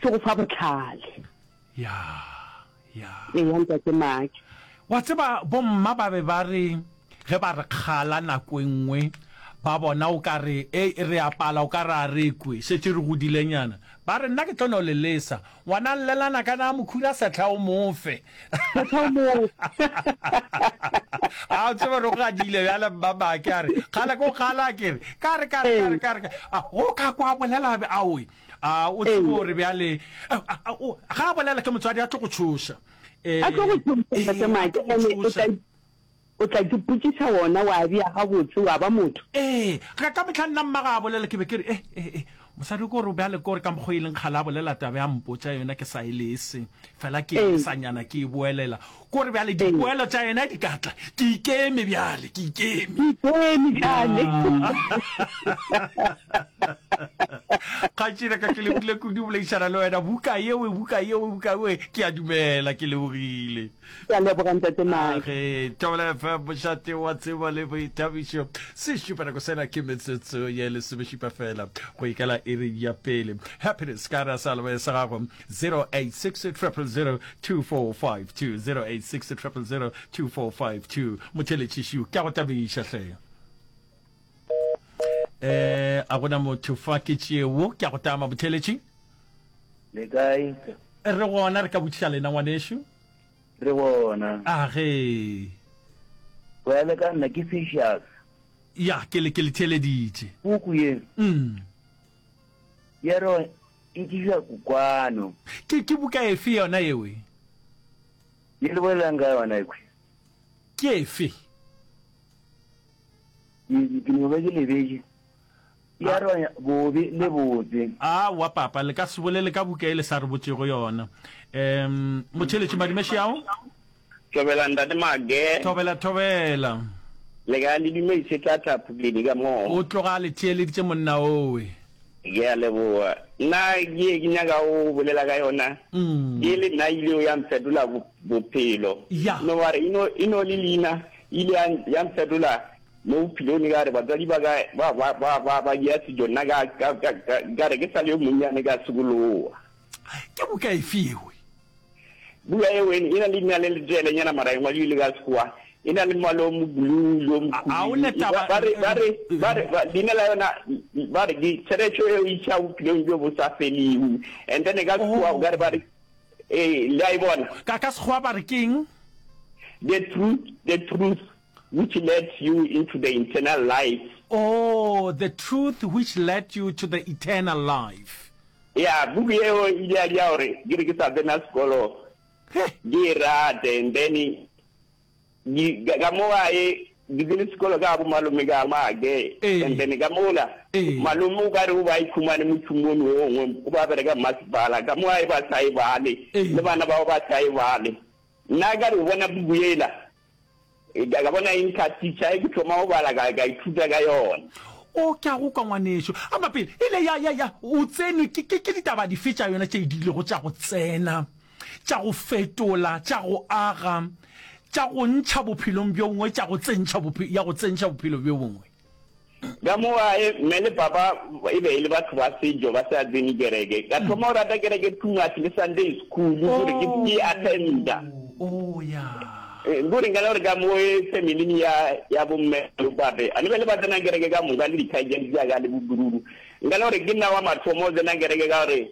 se go fa botlhale ya ya eya ntate maki wa tseba bomma ba be ba re ge ba re kgala nako e nngwe ba bona o ka re e re apala o ka re a re kwe šetše re godilenyana ba re nna ke tlo no le lesa ngwana llelana ka na mokhura sehla o mofe sehla o mofe a o tsebe re go gadile bjale mma bake a re kgala ko kgala ke re ka re ka re ka re ka re a o ka kwa bolela be a oe A o tsebe Ee. gore bjale a- a- a- o- ga a bolela ke motswadi a tlo go tšhoša Eh, a tlo go tšhoša ee, tate a make tlo go ene o tšhoša. tla o tla ke potšiša wona wa bja gabotse wa ba motho ee ga ka mohla nna mmaga a bolela ke be ke re e e e mosadi ko re bjale ko re ka mokgwa e leng kgale a bolela tabe a mpotša yona ke sa e lese fela ke Ee. e sa nyana ke e boelela Ko re bjale dipoelo tša yena di ka tla. Ke ikeme bjale, ke ikeme. Ke ikeme bjale. Kgatšhina ka ke lebogile kudu boleišana le wena buka yeo buka yeo buka yeo ke a dumela ke lebogile ke a leboga ntate mage tobela fa bošate wa tsebo le boithabišo se šupa nako sena ke metsotso ye lesomešupa fela go ikela iri ya pele happiness ka ra sa leboe sa gago 0860002452 motheletšiši ke a go tabiša hle eh a gona motho fa ke tšeo ke a go tama botheletši le kae re gona re ka botšiša lena ngwanešu re gona a ge go ya le ka nna ke fishas ya ke le ke le theleditše puku ye mm Ya re e dira kukwano. Ke, ke buka efe yona yeo e. Ye le bolelang ka yona ekhwi? Ke efe? Ke, ke no be ke lebetše. Ya re bobe le botse. Aowa papa, le ka se bolele ka buka e le sa re botšego yona. Um, motšheletši Madimešiao? Thobela ntate Mage. Thobela thobela. Le ka le dumedise tla tla phukledi ka mo. O tloga le theeleditše monna owe. Ke a leboa. Nna ke ke nyaka o bolela ka yona. Ke le nna ile o ya mfetola bophelo. No wa re ino ino le lina ile ya ya mfetola mo bophelong ka re batswadi ba ka ba ba ba ba ba ya sejo nna ka ka ka ka re ke sa le yo monnyane ka sekoloa. Ke buka efe yewe? Buka yeo e na le leina le leteelenyana mara e ngwadilwe ka Sekgowa. E na le mmala o moblue le o mokhubedu. Ba re leina la yona ba re ke tsheretšo e o isa bophelong bjo bo sa felego. And then ka Sekgowa o ka re ba re, ee, le a e bona? Ka Sekgowa ba re ke eng? The Truth, The Truth. Which led you into the internal life. Oh, the truth which led you to the eternal life. Eya, buku yeo e ile ya dira gore ke re ke sa tsena sekolo ke e rate and then ka mo ga e ke tsene sekolo ka bo malome ka make and then ka mola malome o ka re o ba ikhumane mothumone o ngwe o ba bereka mmasepala ka mo ga e ba sa e bale le bana bao ba sa e bale nna ka re o bona buku ela E ka bona eng ka teacher e ke thoma go bala ka ka ithuta ka yona. O ke a go kwa ngwaneso. A ma pele e le ya ya ya o tsenwe ke ke ke ditaba di fetša yona tše di lego tša go tsena tša go fetola tša go aga tša go ntšha bophelong bjo bongwe tša go tsentšha ya go tsentšha bophelo bjo bongwe. Ka mo gae, mme le papa e be e le batho ba sejo, ba sa tsene kereke. Ka thoma go rata kereke too much le Sunday school, kore ke ke e attenda. Oh, ya. Eh, Kore nka le gore ka mo e family-ing ya, ya bomme le bopape, a ne be le ba tsenang kereke ka moka le dikgaetšedi tša ka le bokururu. Nka le gore ke nna wa mathomo o tsenang kereke ka gore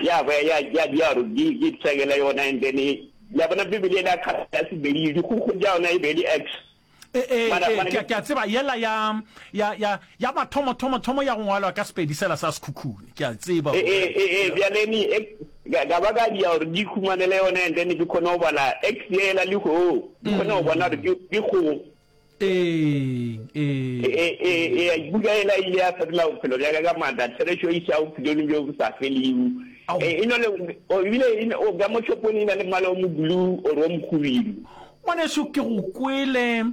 Ya hwa, ya, ya bjaro, di, di pshegela yona, and then, ya bona Bibele yela kgale ya Sebedi, dikgukgo tša yona e be e le Acts. E, e, Mara, e, mara, ke, ke a tseba, yela ya, ya, ya, ya mathomo-thomo-thomo ya go ngwalwa ka Sepedi sela sa Sekhukhune, ke a tseba. E, e, e, e, bjale ni, e, ka, ka ba ka dia gore di ikhumanele yona, and then ke kgone go bala Acts yela le go, ke kgone go bona gore ke, ke go. eng ee buka ela ile ya fetola bophelo bjaka ka maatla therešo e isa bophelong bjo bo sa felego e no le ebile o ka mo shopong e na le mmala o moblue or o mokgubidu ngwaneso ke go kwele